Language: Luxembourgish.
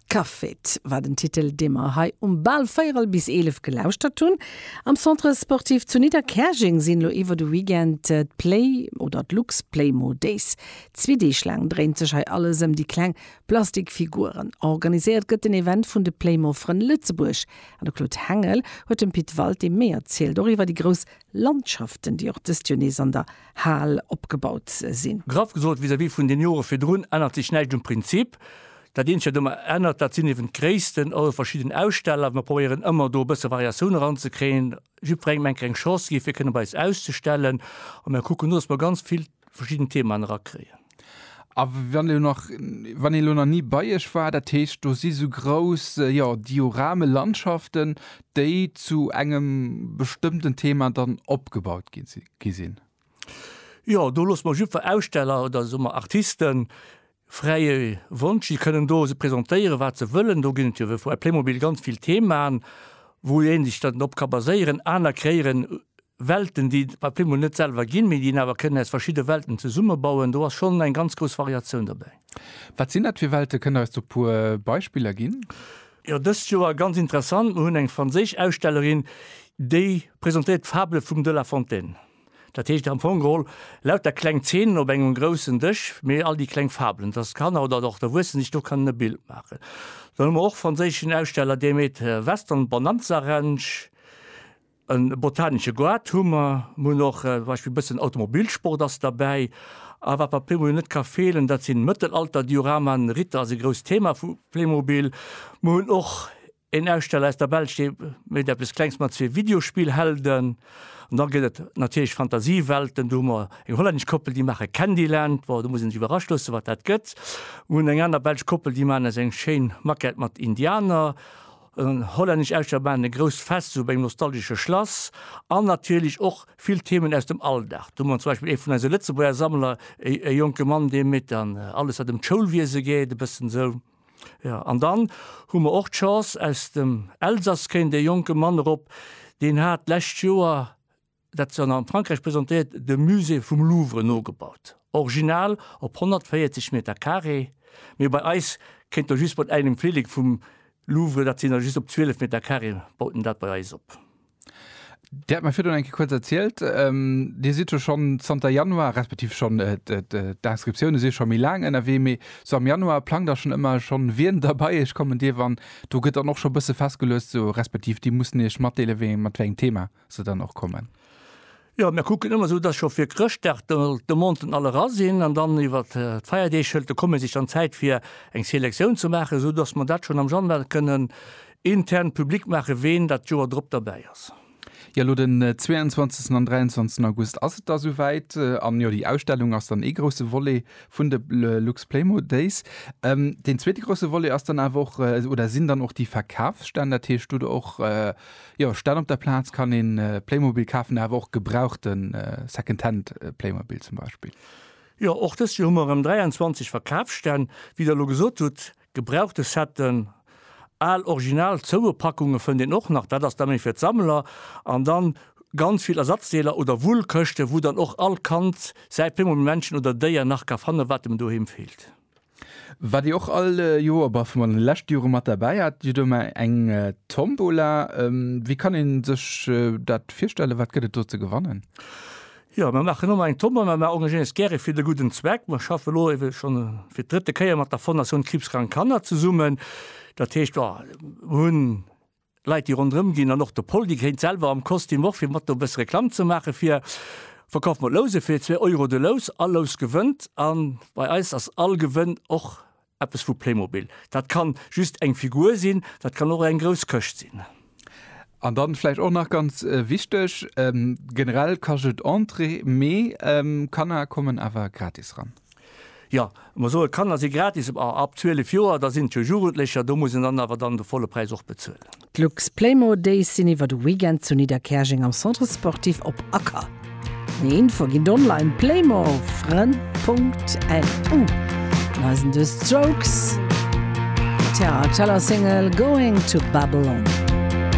Caféit war den Titel, dee mer hei um Bal véierel bis eelef gelauschtert hunn. Am Centre Sportif zu Nidderkäerjeng sinn elo iwwer de Weekend d'Play oder d'Luxplaymo Days. Zwee Deeg laang dréint sech hei alles ëm déi kleng Plastikfiguren. Organiséiert gëtt den Event vun de Playmo-Frënn Lëtzebuerg. An de Claude Hengel huet dem Pit Walté méi erzielt, och iwwer déi grouss Landschaften, déi och dëst Joer nees an der Hal opgebaut sinn. Graff gesot, vis-à-vis vun den Jore virdrun ännert sech näischt um Prinzip. Dat eenzegt, wat domat ännert, dat sinn eeben d'Gréissten, also verschidden Aussteller. Mir probéieren ëmmer do e bësse Variatioun eranzekréien, jiddwerengem eng kleng Chance gi fir kënne bei eis auszustellen a mir kucken elo, datt mer ganz vill verschidden Themaen erakréien. A wann elo nach, wann een elo nach ni bei iech war, dat heescht do si sou grouss, jo, Diorame, Landschaften, déi zu engem bestëmmten Thema dann opgebaut gi si? gi sinn. Jo, do loosse mer jiddwer Aussteller oder soe mer Artisten fräie Wonsch. Si kënnen do se presentéieren, wat se wëllen. Do ginn et jo wéi vua Playmobil ganz vill Themaen, wou ee sech dann drop ka baséieren. Aner kréieren Welten, déi et bei Playmobil net selwer ginn, mee déi een awer kënnen aus verschidde Welten zesummebauen. Do ass schonn eng ganz grouss Variatioun dobäi. Wat sinn dat fir Welte? Kënnt Der eis do e puer Beispiller ginn? Jo, dëst Joer ganz interessant, Mir hunn eng franséisch Ausstellerin, déi presentéiert d'Fable vum de La Fontaine. Dat heescht am Fong geholl lauter kleng Zeenen op engem groussen Dësch, mee all déi kleng Fabelen, dass d'Kanner oder och d'Erwuessen sech do kënnen e Bild maachen. Dann hu mer och franséischen Aussteller, dee mécht Western Bonanza Ranch. E botanesche Goart hu mer, mer hunn och zum Beispill e bëssen Automobilsport ass derbäi. A wat bei Playmobil net ka feelen, dat sinn Mëttelalter-Dioramaen. Ritter ass e grousst Thema vu Playmobil. Mer hunn och een Aussteller aus der Belsch, dee mécht eppes Klengs mat zwee Videospillhelden. An da gëtt et natierlech Fantasiewelten, do hu mer eng hollännesch Koppel, déi maache Candyland, bon, do muss een sech iwwerrascht loossen, wat dat gëtt. Mer hunn eng aner belsch Koppel, déi maachen eis eng schéin Maquette mat Indianer. En hollännesch Äischebahn, e grousst Fest zu engem nostalgesche Schlass an natierlech och vill Themen aus dem Alldag. Do hu mer zum Beispill ee vun eise Lëtzebuerger Sammler, e jonke Mann, dee métt an alles, wat ëm d'Schoulwiese geet, e bëssen esou. Jo, an dann hu mer och d'Chance, aus dem Elsass kéint e jonke Mann erop, deen hat d'lescht Joer Dat se an Frankräich presentéiert, dem Musée vum Louvre nogebaut. Original op 140 Meter Carré, mee bei eis kéint der just mat engem Feeling vum Louvre, dat sinn der just op 12 Meter Carré, baut en dat bei eis op. Dir hat mer virdrun eng Kéier kuerz erzielt, Dir sidd jo schonn zanter Januar, respektiv schonn, d'Inscriptioune si scho méi laang ënnerwee, mee sou am Januar plangt der schonn ëmmer schonn, wien da bei Iech kommen dierf an do gëtt dann och scho bësse festgeluecht, sou respektiv Dir musst Iech matdeele wéi mat wéi engem Thema. se dann och kommen? Jo, mir kucken ëmmer esou, dass scho fir Chrëschtdag de Monten all era sinn an dann iwwer d'Feierdeeg hëlt de Comité sech dann Zäit fir eng Selektioun ze maachen, esou dass mer dat schonn am Januar kënnen intern public maachen, ween dat d'Joer drop derbäi ass. Jo, elo den 22 an 23 August ass et da souwäit. An jo, déi Ausstellung ass dann ee grousse Volet vun de Luxplaymo Days. Deen zweete grousse Volet ass dann awer och oder sinn dann och déi Verkafsstänn. Dat heescht, do hutt Der och Jo, statt op der Plaatz kann een Playmobil kaafen, awer och gebrauchten Secondhand Playmobil zum Beispill. Jo, och dëst Joer hu mer erëm 23 Verkaafsstänn. Wéi der elo gesot hutt, gebrauchte Setten, al original zoue Packunge fënnt een och nach, dat ass da méi fir d'Sammler, an dann ganz vill Ersatzdeeler oder Wullkëschte wou dann och all Kand säi Playmobil-Männchen oder Déier nach ka fannen, wat em doheem feelt. Waat dir och all Joer, bah vun den leschten Joeren mat derbäi haat, dir huet ëmmer eng Tombola. Wéi kann een sech daat virstellen? Waat gëtt et do ze gewannen? Jo, mer maachen ëmmer eng Tombola. Mer engagéieren eis gäre fir de gudden Zweck. Mer schaffen elo ewell schon fir d'drëtte Kéier mat der Fondation Kriibskrank Kanner zesummen. Daat heescht, jo, mer hunn Leit déi ronderëm ginn an och de Pol déi gréint selwer am Kostüm och fir mat do e bësse Reklamm ze maache fir Verkauf mat Louse fir zwee Euro de Lous. All Lous gewënnt a bei eis ass all Gewënn och eppes vu Playmobil. Dat ka just eng Figur sinn, dat kann och eng grouss Këscht sinn. An da vläicht och nach ganz wichteg, generell kascht et Entrée, mee Kanner kommen awer gratis ran. Jo, mer soen, d'Kanner si gratis, ma ab 12 Joer, da sinn et jo Jugendlecher, do muss een dann awer dann de volle Präis och bezuelen. D'Lux-Playmo Days sinn iwwer de Weekend zu Nidderkäerjeng am Centre Sportif Op Acker. Méi Infoe ginn et online, playmo-frënn.lu. An eisen The Strokes, Tja, Cello Single Going to Babylon.